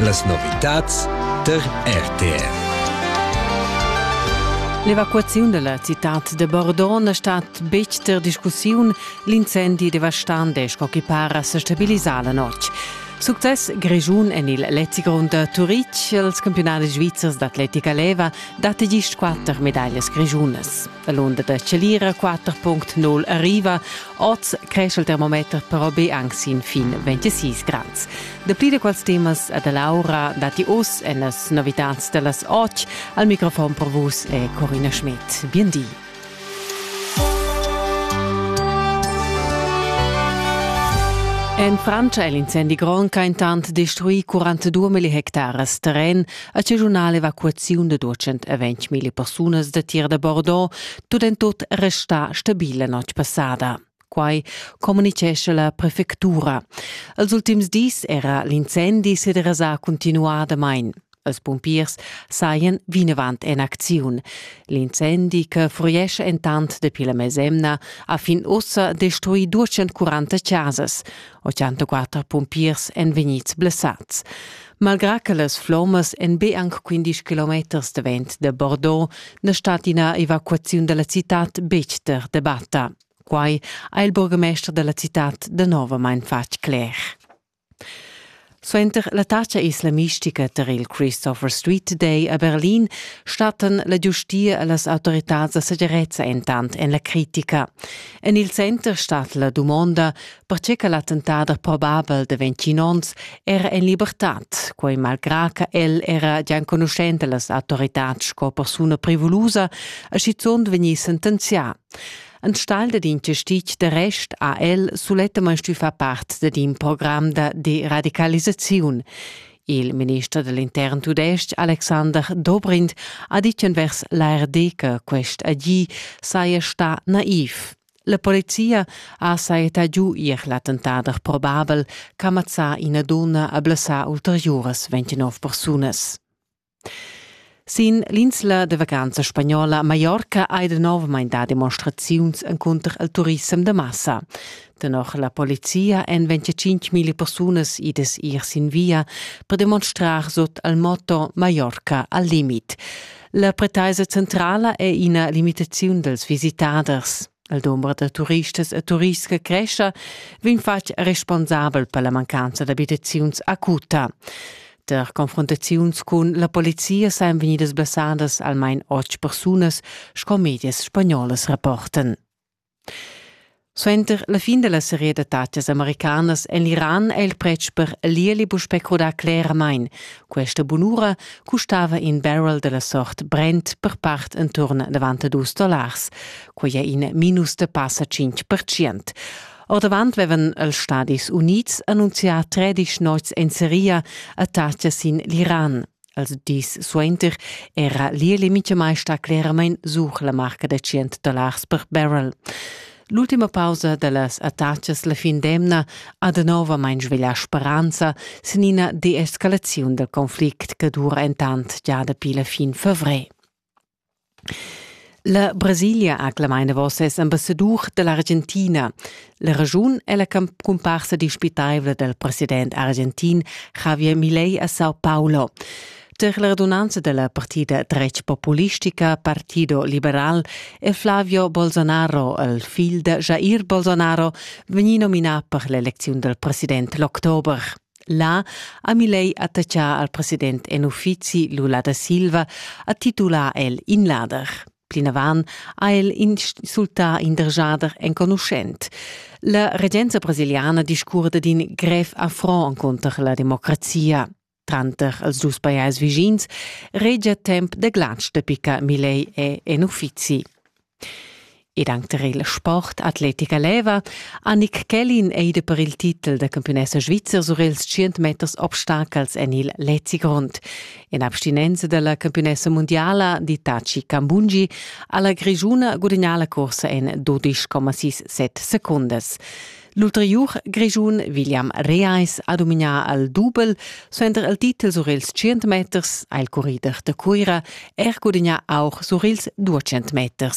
Las novitads tar RTR. L'evacuaziun dalla citad de Bordeaux è stata betg ter discussiun. L'incendi devastante sco che para se stabilisà la notg. Success Grischun en il Lezigrund da Turitg. Els campionati svizzers d'atletica leva dat gist quatter medaglias grischunas. La l'onda da Celira 4.0 arriva. Oz cresce il termometer però be anche sin fin 26 grad. Dapli da quels temas da Laura dati oz en las novitads da las 8. Al microfon per vus è Corina Schmidt. Bien di. En Francia è l'incendi Gronca intant destruì 42 hectares terren. A Ciunale evacuaziun da 220.000 persunas da tir da Bordeaux tut en tut resta stabile notg passada. Quai communicescha la prefectura. Els ultims dis era l'incendi se derasà continuadamain. Els pumpiers sajan vinavant en acziun. L'incendi, che fruiesce entant dapi la mesemna, ha fin ussa destruì 240 casas. 84 pumpiers èn vegnids blessats. Malgrà che las flommas èn be anc 15 kilometers davent da Bordeaux, na stat ina evacuaziun da la citad betg ter debatta. Quai ha il burgamester da la citad danovamain fatg cler. Suenter l'attacca islamistica tar il Christopher Street Day a Berlin stattan la giustia e las autoritads da segirezza entant en la critica. En il center stat la dumonda, perche che l'attentader probabel de 21 onns era en libertad, quei malgrà che el era già enconuschent las autoritad sco persuna privulusa e schizont vegnì sentenzià. Ein Stall dad investit de rest ha el sulettamain stufa part dad in program da deradicalisaziun. Il minister dell'intern tudestg Alexander Dobrindt ha ditg envers l'ARD che quest agì saja sta naiv. La polizia ha sajetà giu ier l'attentader probabel ch'ha mazzà ina dunna e blessà ulteriuras 29 persunas. Sin l'insla de vacanza spagnola Mallorca hai danovamein dà demonstraziuns encunter il turissem da massa. Tenor la polizia èn 25.000 persunas idas ir sin via per demonstrar sut il motto Mallorca al limit. La pretaisa centrala è ina limitaziun dals visitaders. Il dumber da turistas e turists che crescha vegn fatg responsabel per la mancanza d'abitaziuns acuta. Per confrontaziuns cun la polizia sajan vegnidas blessadas almain otg persunas, sco medias spagnolas rapportan. Suenter la fin dalla seria da tatgas americanas en l'Iran è il pretsch per l'ieli puspè crudà cleramain. Questa bunura custava in barrel dalla sort Brent per part enturn 92 dollars. Quai è in minus da passa 5%. Ordavant vevan els Stadis Unids annunzià 13 nots en seria a tatgas sin l'Iran. Als dis suenter era l'Ieli Mitschamai sta cleramain such la marca da 100 dollars per barrel. L'ultima pausa da las attachas la fin d'emna ha de novamain sveglià speranza sin ina deescalaziun dal conflict che dura entant già dapi la fin favrer. La Brasilia ha clamà enavos ses ambassadur da l'Argentina. La raschun è la cumparsa dispitaivla dal president argentin Javier Milei a Sao Paulo. Tar la radunanza da la partida dretg populistica Partido Liberal è Flavio Bolsonaro, il figl da Jair Bolsonaro, vegnì nominà per l'elecziun dal president l'october. Là ha Milei attaccà al president en uffizi Lula da Silva, ha titulà el in lader. Plinavant ha el insultà in dergiader enconuschent. La regenza brasiliana discurda d'in grev affront encunter la democrazia. Tranter els dus pajais vischins regia temp da glatsch da picca Milei è en uffizi. Ed anc tar il sport atletica leva Annick Kellin ei de per il titel da campiunessa svizzer sur ils tschient meters obstacels en il Lezi Grond. In abstinenza dalla campiunessa mundiala Ditaci Cambungi alla Grigiuna gudagnà la corsa en 12,6 secundas. L'ulteriur Grigiun William Reis ha domignà al dubel, suenter il titel sur ils 100 meters ha il currider da Cuira er gudagnà auch sur ils 200 meters.